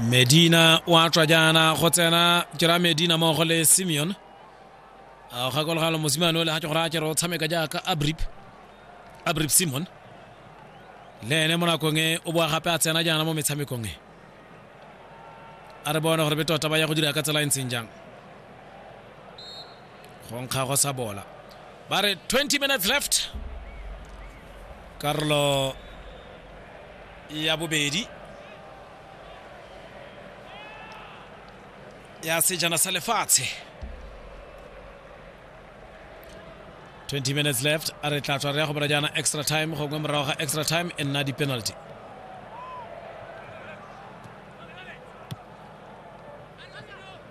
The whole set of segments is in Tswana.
medina o a tswa jaana go tsena jera medina mmogo le simeon a gakologalo mosimane o le ga ke gore a kere o tshameka jaaka abrip abrip simon le ene mo nakong e o boa gape a tsena jaana mo metshamekong e a re bone gore be tota ba ya go dira ka tsela e ntseng jang go nkga go sa bola ba re 20 minutes left karolo ya bobedi ya sejana sa lefatshe 20 minutes left a re tla tswa re ya go bora jaana extra time gongwe morago ga extra time e nna di-penalty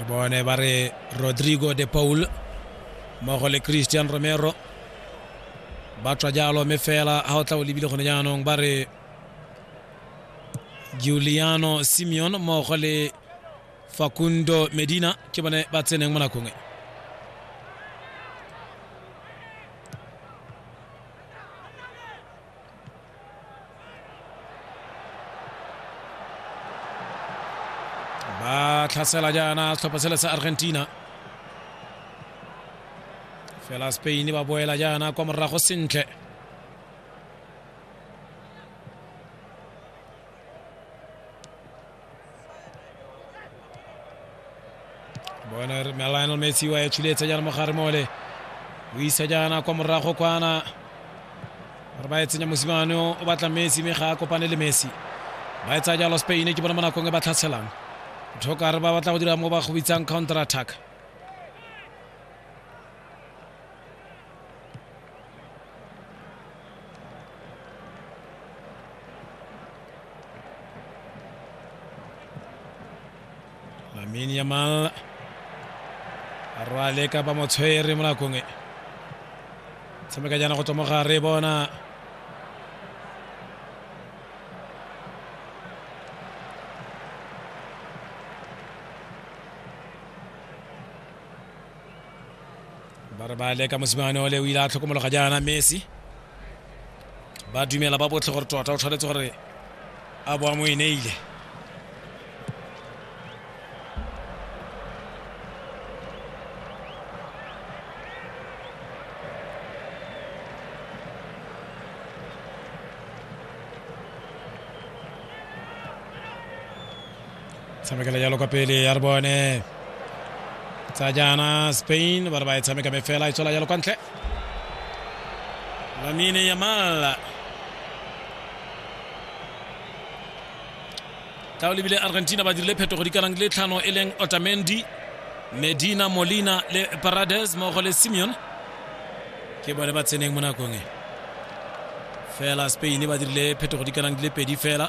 re bone ba re rodrigo de paul mmogo le christian romero ba tswa jalo mme fela ga o tla o lebile gone jaanong ba re giuliano simeon mmogo le facundo medina ke bone ba tseneng mo nakong e ba tlhasela jaana setlhopha sele sa argentina fela spain ba boela jaana kwa morago sentle bona re lionel messi wa etshuletsa jaana mogare mole o isa jaana kwa morago kwana gore ba etsenya mosimane o batla messi mme ga a kopane le messi ba etsa jalo spain ke bona mo nakong e ba tlhatshelang tlhokare ba batla go dira mo ba go bitsang counter attack Lamine Yamal a rwale ka ba motshwere mo nakong e tshameka jaana go tswa mo gare bona ba re ba leka mosimane ole o ile a tlhokomologa jaana messi ba dumela ba botlhe gore tota o tshwanetse gore a boa mo e neile tshamekela jalo kwa pele ya re bone tsa jaana spain ba re ba e tshameka me fela e tswela jalo kwa ntle lamine yamal ka o lebile argentina ba dirile phetogo di kanang le tlhano e leng otamendi medina molina le parades mmogo le simeon ke bone ba tseneng mo nakong e fela spain ba dirile phetogo di kanang di le pedi fela